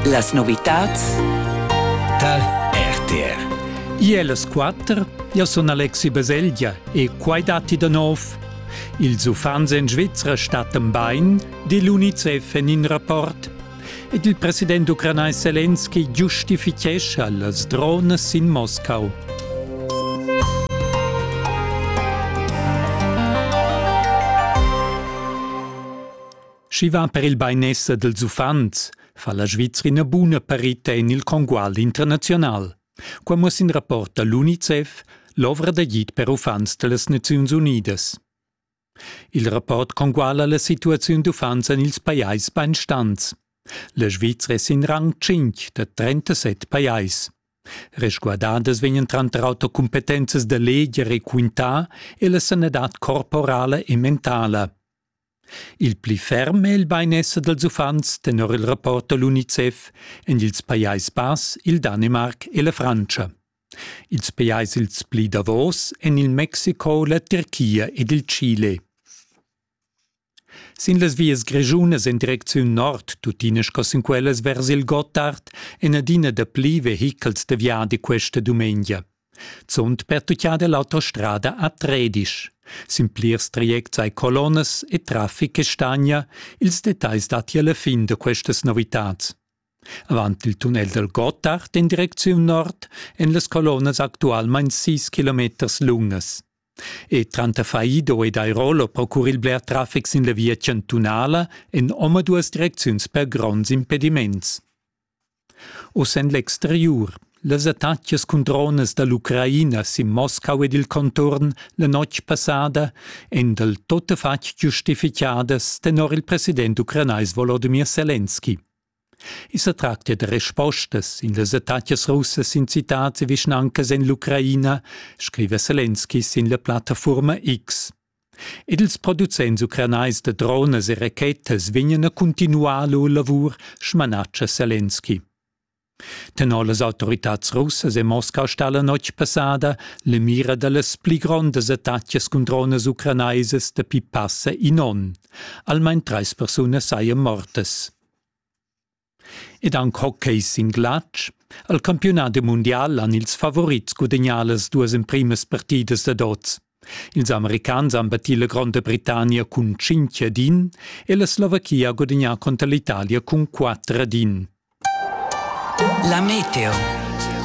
Las novitads tal RTR. Iels quatter, io sun Alexi Baselgia e quai datti da nov. Ils uffants en Svizra stattan bain, di l'UNICEF en in rapport. Ed il president ucranais Zelensky giustifichescha las drones in Moscau. Schi va per il bainesser dels uffants, fa la Svizrina buna parita in il congual internazional. Qua muss in rapport dall'UNICEF l'ovra d'agid per uffants dellas Naziuns Unidas. Il rapport conguala la situaziun d'uffants en ils pajais bainstants. La Svizra è sin rang 5 da 37 pajais. Resguardadas vegnan tranter auter cumpetenzas da leger e quintà e la sanadad corporala e mentala. Il pli ferm è il bainesser dals uffants tenor il rapport da l'UNICEF en ils Pajais Bass, il Danimarc e la Frantscha. Ils pajais ils pli davos èn il Mexiko, la Tirchia ed il Chile. Sin las vias grischunas en direcziun nord, tuttina sco sin quellas vers il Gottard, èn adina dapli vehichels da viadi questa dumengia. Zunt pertuchà dall'autostrada a Tredisch. Sin plirs trajects ei colonnas e traffic che stagna ils detagls datti alla fin da questas novitads. Avant il tunnel dal Gottard in direcziun nord en las colonnas actualmein 6 kilometers lungas. E tranter Faido ed Airolo procura il bler traffic sin la via chantunala en omaduas direcziuns per gronds impediments. Uss en l'exteriur. Las attacas cun dronas da l'Ucraina sin Moscau ed il conturn la notg passada èn dal tuttafatg giustificadas tenor il president ucranais Volodymyr Selenski. I sa tractia da respostas in las attacas russas sin citads e vischnancas en l'Ucraina, scriva Selenski sin la plattafurma X. Ed ils producents ucranais da dronas e rachetas vegnan a cuntinuar lur lavur, smanatscha Selenski. Tenor las autoritads russas è Moscau stà la notg passada la mira da las pli grondas attacas cun dronas ucranaisas dapi passa in onn. Almain trais persunas sajan mortas. Ed aunc hockey sin glatsch. Al campiunat mundial han ils favorits gudegnà las duas emprimas partidas dad oz. Ils americans han battì la Gronda Britannia cun 5 ad 1 e la Slovachia ha gudagnà conter l'Italia cun 4 ad 1. La Meteo.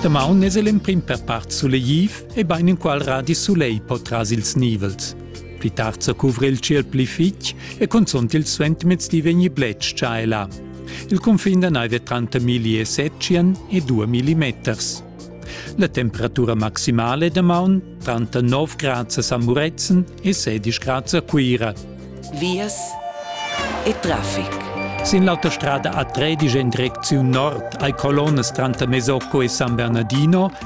Damaun es l'emprim per part sulegliv e bain inqual radi sulegl po tras ils nivels. Pli tard sa cuvra il ciel pli fitg e cunzunt il suentermezdi vegni bletsch già e là. Il cunfin da neiv è tranter 1700 e 2000 meters. La temperatura maximale da maun tranter 9 grad a Muretzen e 16 grad a Cuira. Vias e traffic. Sin l'autostrada A13 en direcziun nord hai colonnas tranter Mesocco e San Bernardino